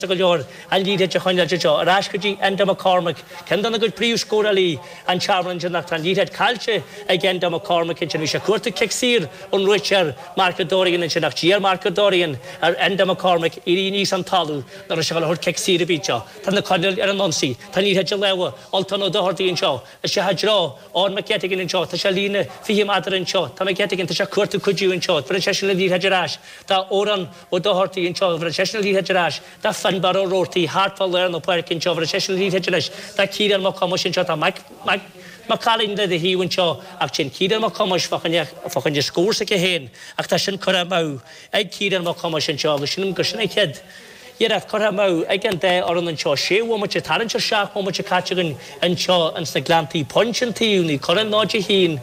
Tá go leor ama aige fá choinne í a chur ar ais go dtí Enda McCormick, ceann de na gcuid príomhscórálaí an Tearmann ansin ach tá an liathróid caillte ag Enda McCormick ansin. Bhí sé ag cuartú cic saor ón réiteoir Mark O Dorrian ansin ach d'iarr Mark O Dorrian ar Enda McCormick éirí aníos ón talamh nárbh aon ábhar cic saor a bhí seo. Tá Naomh Conaill ar an ionsaí. Tá an liathróid i lámha Ultan Ó Doherty anseo. Is é i dtreo Eoin McGettigan anseo. Tá sé líne 20 meadar anseo. Tá McGettigan, tá sé ag cuartú cuidiú anseo. Bheireann sé sin an liathróid ar ais. Tá Odhrán. Ó Dochartaigh anseo. Bheir sé sin an liathróid ar ais do Finnbarr Ó Roartaigh thart fá lár na páirce anseo. Bheir sé sin an liathróid ar ais do Ciarán Mac Thomáis anseo. Tá Mac Cailinne de dhíth anseo ach téann Ciarán Mac Thomáis fá choinne scór s'aige féin ach tá sin curtha amú ag Ciarán Mac Thomáis anseo agus sin an chéad iarracht curtha amú ag an dá fhoireann anseo sé bhomaite tarraingt ar seacht mbomaite caite againn anseo ins na Gleanntaí pointe an taobh Naomh Conaill 0-1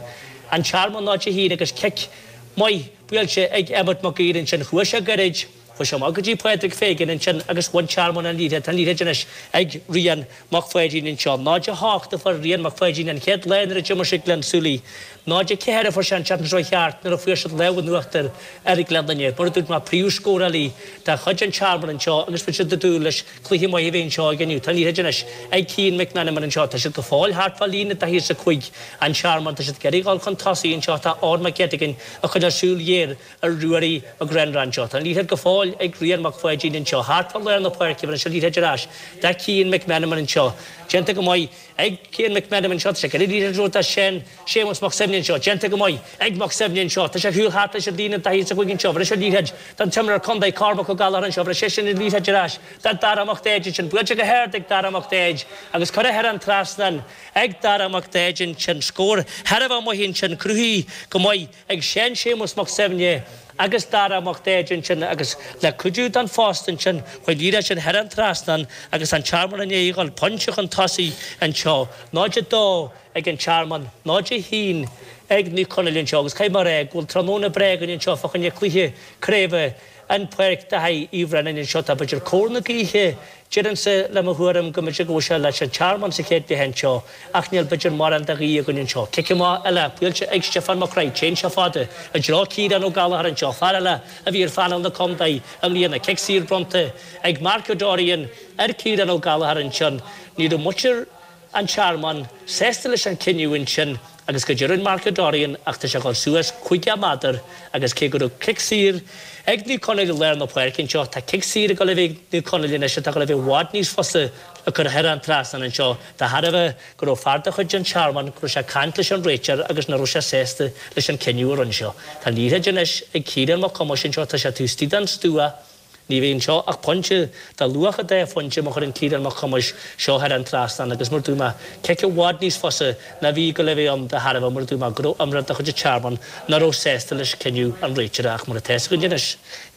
An Tearmann 0-1 agus cic maith Buailte ag Emmet Mag Uidhir ansin, chuaigh sé go hard, chuaigh sé amach go dtí Pádraig Pheigin ansin agus bhain an Tearmann an liathróid, an liathróid anois ag Rian Mac Pháidín anseo. 0-8 a fuair Rian Mac Pháidín an chéad lá nuair a d'imir sé Gleann tSúilí. 0-4 a fuair sé an tseachtain seo chuaigh thart nuair a fuair siad lámh in uachtar ar Gaeil Leitir Ceanainn, mar a dúirt mé, príomhscórálaí de chuid an Tearmann anseo agus bhí siad ag dúil le Cluiche maith a bheith anseo aige inniu. Tá an liathróid anois ag Cian McMenamin anseo. Tá siad go fóill thart fá líne daichead is a cúig an Tearmann. Tá siad ag iarraidh dhul chun tosaigh anseo. Tá Eoin Mac Ghettigan ag coinneáil súil ghéar ar Ruairí McGrenra anseo. Tá an liathróid go fóill ag Rian Mac Pháidín anseo. Thart fá lár na páirce bheir sé an liathróid ar ais do Cian McMenamin anseo. Déanta go maith. Ag Cian McMenamin anseo, tá sé ag cur na liathróide anseo do Seán Séamus Mac Suibhne anseo, déanta go maith, ag Mac Suibhne anseo, tá sé thiar thart leis an líne daichead is a cúig anseo, bheir sé an liathróid don imreoir Contae Cormac Ó Gallachar anseo, bheir sé sin an liathróid ar ais do Dara Mac Daid ansin, buailte go hard ag Dara Mac Daid agus curtha thar an trasnán ag Dara Mac Daid ansin, scór thar barr amach ansin, cruthaithe go maith. ag Seán Séamus Mac Suibhne agus Dara Mac Daid ansin agus le cuidiú den phosta ansin chuaigh an liathróid sin thar an trasnán agus an Tearmann i ndiaidh a ghabháil pointe chun tosaigh anseo, 02 ag an Tearmann, 01 ag Naomh Conaill anseo agus caithfidh mé a rá go bhfuil tráthnóna breá againn anseo fá choinne cluiche craoibhe i bPáirc Dáibhí Uí Bhraonáin anseo tá b'fhéidir cóir na gaoithe Deirimse le mo thuairim go mb'fhéidir go bhfuil sé leis an tearmann sa chéad leath anseo, ach níl b'fhéidir mórán de ghaoth againn anseo. Cic amach eile, buailte ag Stiofán Mac Craith. Téann sé fada, i dtreo Chiarán Ó Gallachóir anseo, fear eile a bhí ar phainéal na Contae i mbliana. Cic saor bronnta ag Mark O Dorrian ar Chiarán Ó Gallachóir ansin. Ní raibh muintir. An Tearmainn sásta leis an chinneadh ansin agus go deimhin Mark O Dorrian á tabhairt suas caoga méadar agus cé go raibh cic saor ag Naomh Conaill i lár na páirce anseo tá cic saor ag uilig ag Naomh Conaill anois atá uilig i bhfad níos fusa le cur thar an trasnán anseo de thairbhe go raibh fear de chuid an Tearmainn go raibh sé ag caint leis an réiteoir agus nach raibh sé sásta leis an chinneadh a rinne sé. Tá an liathróid anois ag Ciarán Mac Thomáis anseo tá sé taobh istigh den stua Ní bheidh anseo ach pointe de luach a dá phointe má chuireann Ciarán Mac Thomáis seo thar an trasnán agus mar a dúirt mé cic i bhfad níos fusa ná bhí ag gabháil a bheith ann de thairbhe mar a dúirt mé go raibh imreoir de chuid an Tearmann ná raibh sásta leis cinneadh an réiteora ach mar atá a fhios againn anois,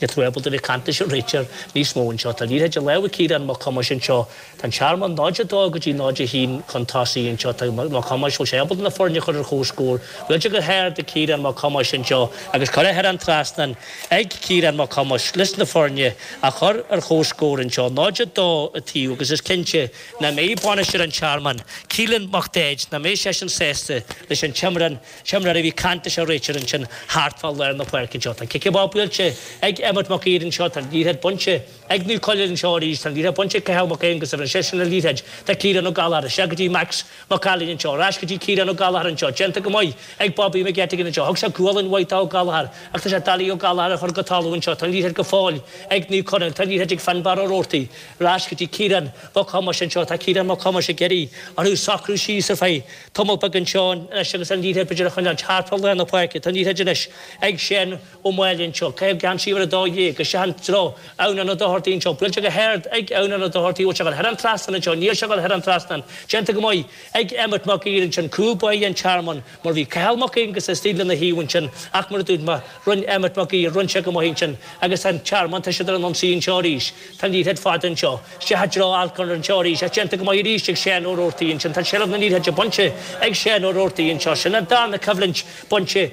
níltear ábalta a bheith ag caint leis an réiteoir níos mó anseo. Tá an liathróid i lámha Ciarán Mac Thomáis anseo Tá an Tearmann 02 go dtí 01 chun tosaigh anseo. Tá Mac Thomáis fós ábalta na foirne a chur ar chomhscór. Réiteach go hard ag Ciarán Mac Thomáis anseo agus curtha thar an trasnán ag Ciarán Mac Thomáis leis na foirne a chur ar chomhscór anseo, 02 a taobh, agus is cinnte nach mbeidh bainisteoir an Tearmainn, Keelan Mac Daeid, nach mbeidh seisean sásta leis an imreoir a bhí ag caint leis an réiteoir ansin thart fá lár na páirce anseo. Tá cic i bhfad buailte ag Emmet Mac Aoidh anseo. Tá an liathróid bainte. Ag Naomh Conaill anseo arís tá an liathróid bainte ag Cathal mac Aonghasa, shín seisean an liathróid do Chiarán Ó Gallchobhair isteach go dtí Max Mac Ailín anseo, ar ais go dtí Ciarán Ó Gallchobhair anseo, déanta go maith ag Bobby McGettigan anseo, thug sé gualainn mhaith d'Ó Gallchobhair ach tá sé doiligh Ó Gallchobhair a chur go talamh anseo, tá an liathróid go fóill ag Naomh Conaill, tá an liathróid ag Fionnbarra Ó Robhartaigh, ar ais go dtí Ciarán mac Thomáis anseo, tá Ciarán mac Thomáis ag iarraidh orthu socrú síos ar feadh tamall beag anseo anois agus an liathróid b'fhéidir a choinneáilt thart fá lár na páirce, tá an liathróid anois ag Shea Ó Maoileoin anseo, ag caitheamh geansaí uimhir 12, isteach i dtreo Odhrán Ó Dochartaigh anseo, buailte go hard, ag Odhrán Ó Dochartaigh, bhfuil sé curtha thar an trasnán anseo, níl sé curtha thar an trasnán, déanta go maith, ag, Emmet Mac Aoidh ansin, cúl báire an Tearmainn, mar bhí Cathal Mac Aonghasa istigh lena thaobh ansin, ach mar a dúirt mé, rinne Emmet Mac Aoidh, rinne sé go maith ansin, agus tá an Tearmann, tá siad ar an ionsaí anseo arís, tá an liathróid fada anseo, isteach i dtreo Alcorn anseo arís, is déanta go maith arís ag Seán Ó Roarty ansin, tá seilbh na liathróide bainte ag Seán Ó Roarty anseo, sin an darna coimhlint, bainte,